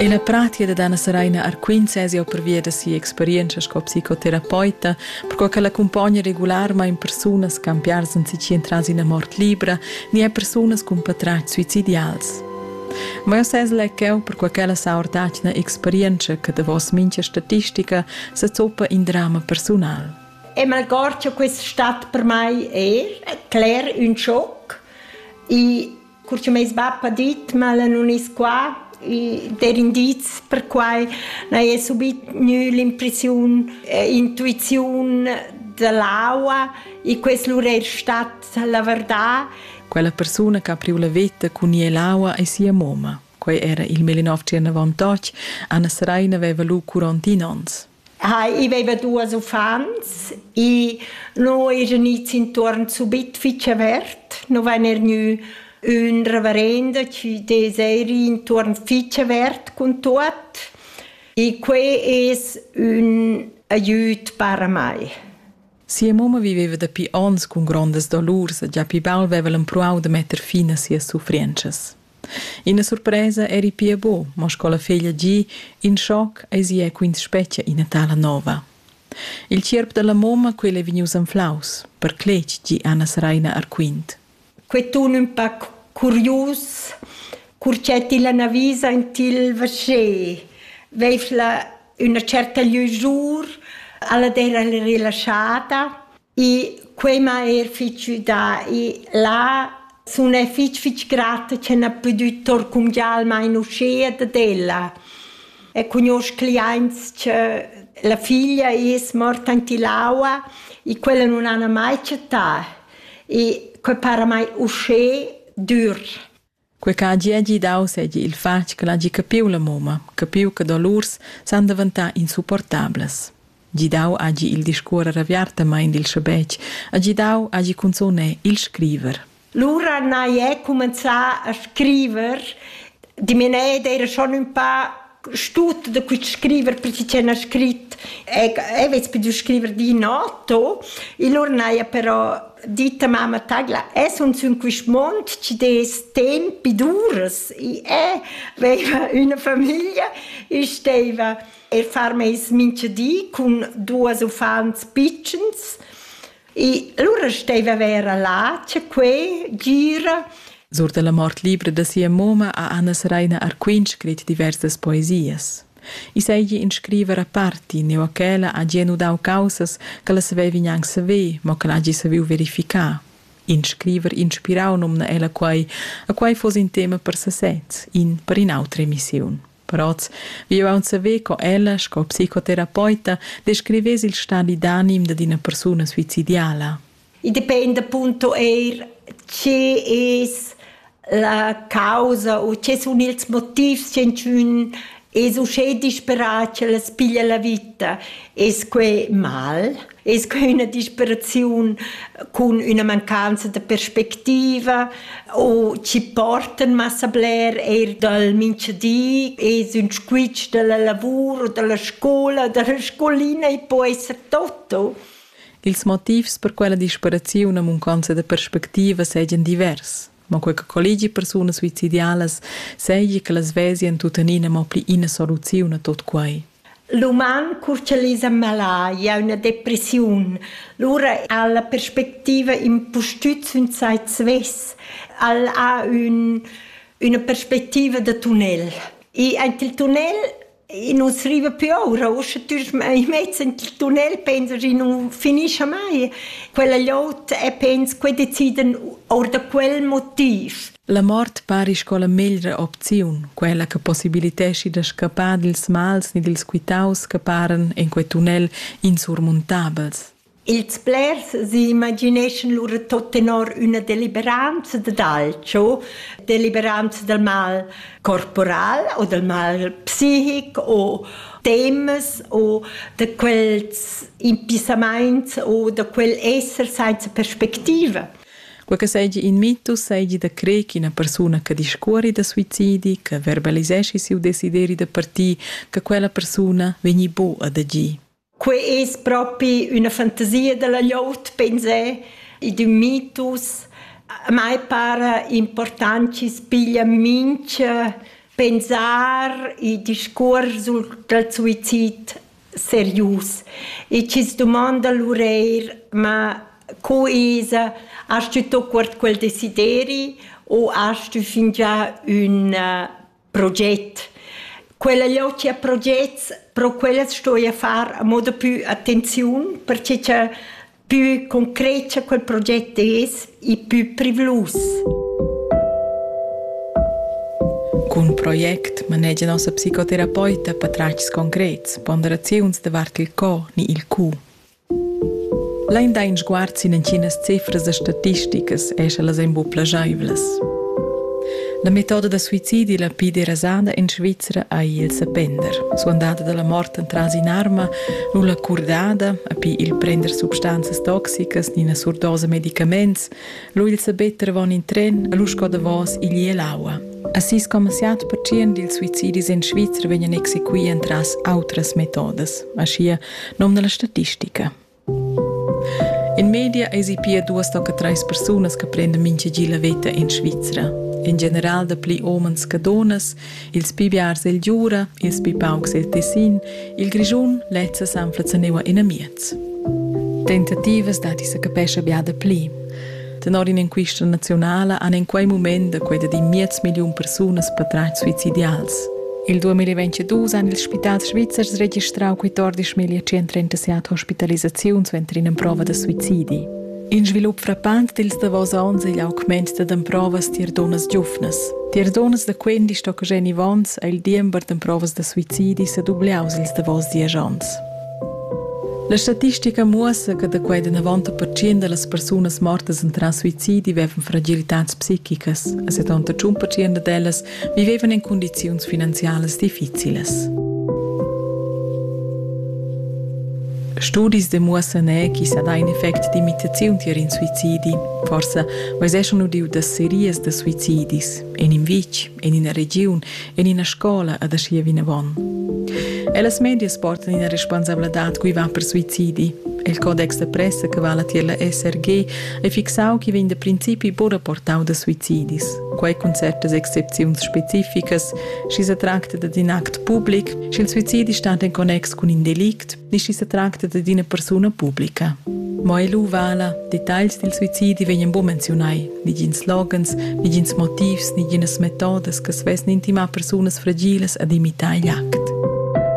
E la pratia da Dana Saraina Arquint sez jau pervia da sia experienza sco psicoterapeuta, perquai che l'accumpogna regularmain persunas ch'han piars anzichì entras ina mort libra ni er persunas cun patratgs suicidials. Ma jau sez lec'eu perquai ch'ella sa ordad ina experienza che davos mincha statistica sa zoppa in drama persunal. E malgord che questa stat per mai è cler un schoc, i Cur che meis bap ha dit ch'el nun es qua, i der indiz per quai, n'haja subit gnü l'impressiun e intuiziun da l'aua e quest lur eir stat la verdà. Quella persuna che ha priu la veta cun ir l'aua è sia mamma. Quei era il 1998. Anna Seraina aveva lu 41 onns. Hai, i veva duas uffants e no eja gnits intuorn subit fich avert. No vain er gnü ün reverenda chi dess eir ir intuorn fich avert cun tuot e quai es ün aiüt para mai. Sia mamma viveva dapi ons cun grondas dolurs e già pi baul veva l'empruau da metter fin a sias suffrientschas. Ina surpresa eri pia bu, mo sco la feglia gi, in schoc eisi è quins spetga ina tala nova. Il tgierp dalla moma, quel è vegnius anflaus, per cletg gi Anna Sraina Arquint. Quei tun ün pac curius, cur che ti la navisa in til vasché, veifla üna certa lüjur, alla d'era rilaschada. I quei m'ha eir fich güdà. I là sun e fich fich grata che n'ha pudü torcumgiar almain uschea dad ella. E cugnuosch cliaints che la figlia es morta in Tilaua e quella nun hana mai chattà. E que para mai uschè dür. Quei che hagi hagi dau seigi il fatg ch'el hagi capiu la mumma, capiu che dolurs san daventar insupportablas. Gidau hagi il discuorer aviartamein dil schabetg, hagi dau hagi cunzun è il scriver. Lura n'hai ei cumenzà a scriver. Die meine Ede era schon un paar stut da quit scriver per ti c'è scrit e e vez più scriver di nato il ornaia però ditta mamma tagla es un sun quist mond ci des tempi dures i è aveva una famiglia e steva er far meis mincha di cun duas uffants pitschens E allora steva vera là, c'è quei, gira. Sur dalla mort libra da sia moma a Anna Seraina Arquin scrit diversas poesias. I seigi in scriver a parti, ne o ch'ella ha gienu dau causas che la savevi gnanc saver, mo che l'hagi saviu verificar. In scriver inspirau nomna ella quai, a quai fos in tema per sesez, in per in'autra emissiun. Prats. Vi aunc saver co ella, sco psicoterapeuta, descrivess il stadi d'anim dad ina persuna suicidiala. I dependa punto eir che es la causa o che sun ils motivs che ün es uschè disperat che las piglia la vita. Es que mal? Es que üna disperaziun cun üna mancanza da perspectiva o chi portan massa bler eir dal mincha di? Es ün squitsch da la lavur, da la scoula, da la scolina e po esser tutto? Ils motivs per quella disperaziun e mancanza da perspectiva seigien divers. ma quei che collegi persunas suicidialas seigi che las vesien tuttenina mo pli ina soluziun a tot quei. L'uman curcialisa malaria, una depressiun. Lura ha la perspectiva impustüt sün sai svess. El ha un, una perspectiva de tunnel. E ant il tunnel E nus riva più oura, uschè tüsch i mezz in il tunnel pensa chi nu finischa mai. Quella glot e pens che decidan or da quel motiv. La mort pari sco la meglra opziun, quella che possibiliteschi da scappar dils mals ni dils quitaus che paran en quei tunnel insurmuntabels. Ils blers s'imagineschan lura tot tenor üna deliberanza dad alcho, deliberanza dal mal corporal o dal mal psichic o temas o da quels impissamaints o da quel esser sainza perspectiva. Quei che seigi in mitus seigi da crer ch'ina persuna che discuori da suicidi, che verbaliseschi siu desideri da partir, che quella persuna vegni bu ad agir. Quei es propi üna fantasia dalla glieud, pensé. I d'ün mitus. A mai para important chi's piglia mincha pensar e discuors sul dal suizid serius. E chi's dumonda lur eir, ma co esa, hast tü tuot quart quel desideri u hast tü fingià ün proget. Quella logia progets, pro quellas sto io far a moda più attenziun, perché cha più concreta quel proget es e più privlus. Cun project manegia nossa psicoterapeuta patratgs concrets, ponderaziuns davart il co ni il cu. Lain dà in sguard sin entginas cifras e statisticas e sche las èn buc plagiaivlas. La metoda da suicidi la pli derasada en Svizra ei il sapender. Suandada dalla mort entras in'arma, nulla curdada, api il prender substanzas toxicas ni ina surdosa medicaments, lu il sabetter avon in tren, lu sco davos igl e l'aua. A 6,7% dils suicidis en Svizra vegnan exequì entras autras metodas. Aschia Nom da la statistica. In media eisi pia duas tocca treis persunas che prendan mintgagi la veta in Svizra. In general da pli omens che donas, ils pi biars el Giura, ils pi paucs el Tessin, il Grischun lezza s'anfla zaneva in amiez. Tentativas dati sa capescha bia da pli. Tenor in'enquista naziunala han en quei mument da quei da in miez milliun persunas patratg suicidials. Il 2022 han ils spitals svizzers registrau quei 12.137 hospitalisaziuns suenter in'emprova da suicidi. In svilup frappant dils davos onns igl augment da emprovas tier dunnas giuvnas. Tier dunnas da 15 tocca Jenny Vons ha il diember d'emprovas da suicidi sedubliaus ils davos diesch onns. La statistica muossa che da quei danavon da pertschien dallas persunas mortas entras suicidi vevan fragilitads psichicas e 71 pertschien dad ellas vivevan en cundiziuns finanzialas difficilas. Studis demuossan er chi sa dà in effect d'imitaziun tier in suicidi. Forsa veseschon udiu da serias da suicidis, en in vitg, en ina regiun, en ina scola ad aschia vinavon. Ellas medias portan ina responsabladad cui va per suicidi. Il codex da pressa che vala tier la SRG è fixau che vegn da principi buca portau da suicidis. Quei cun certas excepziuns specificas, schi se tracta da in act public, sch'il suicidi stat in connex cun in delict, ni schi se tracta da una persona pubblica. Mo ei lu vala, details dil suicidi vegnan buca menzionai. negins loghens, negins motivs, neginas metodas che svesn intimar persunas fragilas ad imitar igl act.